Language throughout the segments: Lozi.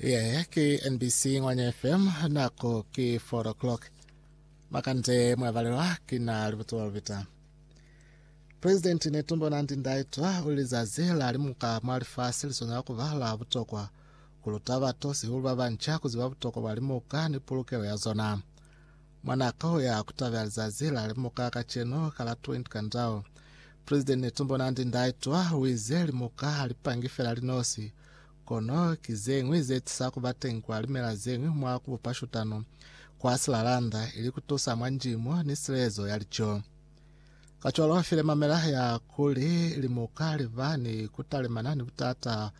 Yeah, ke NBC Ngwanya FM nako ke 4 o'clock. Makande mwavalelwa kina libuto balubita. President Netumbo Nandi Ndaitwa uli lizazi la limuka mwa lifasi liswanela kuba la butokwa kuluta bato sihulu babanca kuziba butokwa bwa limuka ni pulukelo ya zona. Mwa nako ya ku tabela lizazi la limuka kacenu ka la 20 ka ndau, President Netumbo Nandi Ndaitwa uize limuka ha li pangi fela linosi, kono ki zeñwi ze tisa ku ba teñi kwa limela zeñwi mwa ku bupa shutano kwa silalanda ili ku tusa mwa ndimo ni silezo ya lico. Kacwalo file mamela ya kuli limuka li ba ni ku talimana ni butata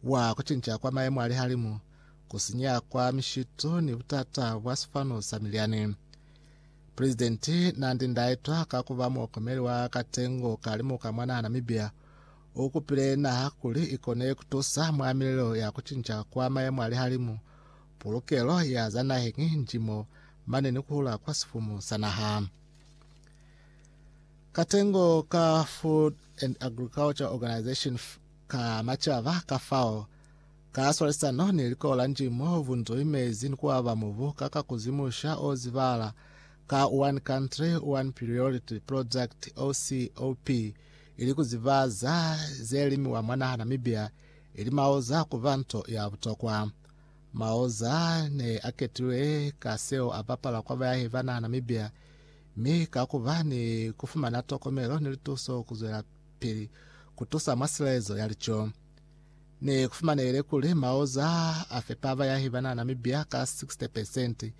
bwa ku cinca kwa mayemo a lihalimu. ku sinya kwa mishitu ni butata bwa sifanu sa milyani. Presidenti Nandi Ndaitwa ka ku ba muokomeli wa katengo ka limu ka mwa naha Namibia, u kupile naha kuli i kone ku tusa mwa milelo ya ku cinca kwa mayemo a lihalimu, pulukelo ya za naheng, njimo, mane ni ku hula kwa sifumu sa naha. Katengo ka Food and Agriculture Organization, Ka macaba kafao, ka swalisano ni likola la Njimo, vunzoi mezi ni kuaba mubu ka ka kuzimusha o zibala ka One Country, One Priority Project, OCOP, ili ku zibaza ze limiwa mwa naha Namibia, ili maoza kuba nto ya butokwa. Maoza ne a ketilwe ka seo a bapala kwa bayahi ba naha Namibia, mi ka kuba ni kufumana tokomelo ni lituso kuzwela pili ku tusa mwa silaezo ya lico. Ne ku fumanehile kuli maoza a fepa bayahi ba na Namibia ka 60 percent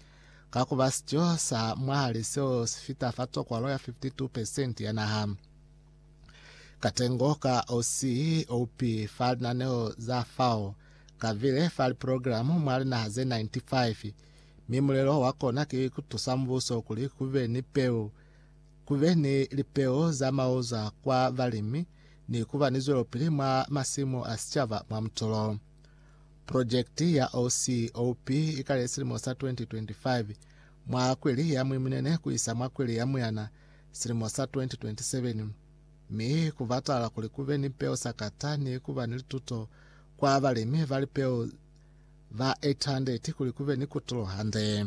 ka ku ba sico sa mwahali seo si fita fa tsokwalo ya 52 percent ya naha. Katengo ka OC oupi fa linaneo za FAO ka bile fa liprogramo mwa linaha ze 95, mi mulelo wa kona ki ku tusa mubuso kuli ku be ni peu ku be ni lipeo za maoza kwa balimi ni ku ba ni zwelopili mwa masimu a sicaba mwa mutolo. Projekiti ya OCOP i kale silimo sa 2025 mwa kweli ya Mwimunene ku isa mwa kweli ya Muyana silimo sa 2027, mi ku batala kuli ku be ni peo sa kata ni ku ba ni lituto kwa balimi ba lipeo ba 800 kuli ku be ni kutulo hande.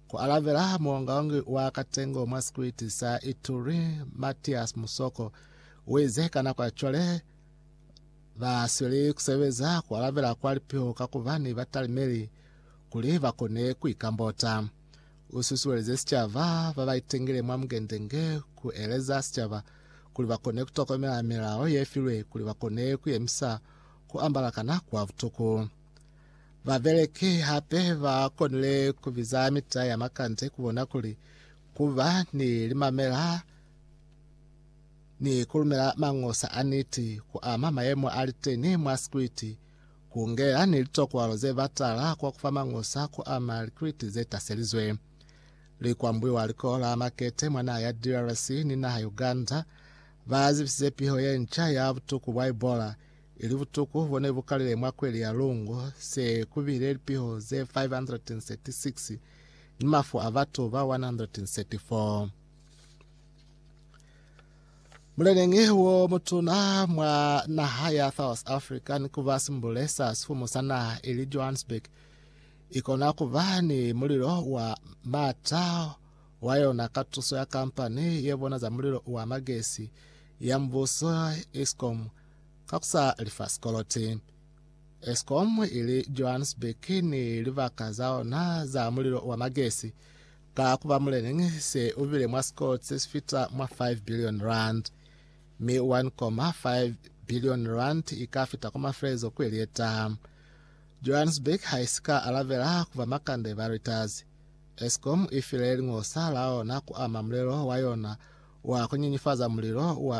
Ku alabela muongaongi wa katengo mwa sikwiti sa Ituri, Mathias Musoko, u ize ka nako ya cwale ba sweli ku sebeza ku alabela kwa lipiho ka ku ba ni batalimeli kuli ba kone ku ikambota. U susuelize sicaba ba ba itengile mwa Mugende-nge ku eleza sicaba kuli ba kone ku tokomela milao ye filwe kuli ba kone ku yemisa ku ambala kana kwa butuku. Babeleki hape ba konile ku biza mita ya makande ku bona kuli ku ba ni limamela ni ku lumela mangosa a niti ku ama mayemo a li teni mwa sikwiti, ku ngela ni litokwalo ze batala kwa ku fa mangosa ku ama likwiti ze taselizwe. Li kwambuiwa Likolo la Makete mwa naha ya DRC ni naha Uganda, ba zibisize piho ye nca ya butuku bwa Ebola Ili butuku bo ne bu kalile mwa kweli ya lungu, se ku bile lipiho ze 536 ni mafu a batu ba 134. Muleneñi wo mutuna mwa naha ya South Africa ni kuba simbule sa sifumu sa naha ili Johannesburg ikona kuba ni mulilo wa mata wa yona ka tuso ya kampani ye bona za mulilo wa magesi ya mbuso Eskom ka ku sa lifa sikoloti. Eskom ili Johannesburg ni libaka za ona za mulilo wa magesi ka ku ba muleneñi se ubile mwa sikoloti se si fita mwa 5 billion rand, mi 1.5 billion rand i ka fita kwa mafelelezo kweli ye ta. Johannesburg ha i si ka alabela ku ba makande ba Reuters. Eskom i file lingosa la ona ku ama mulelo wa yona wa ku nyenyefaza mulilo wa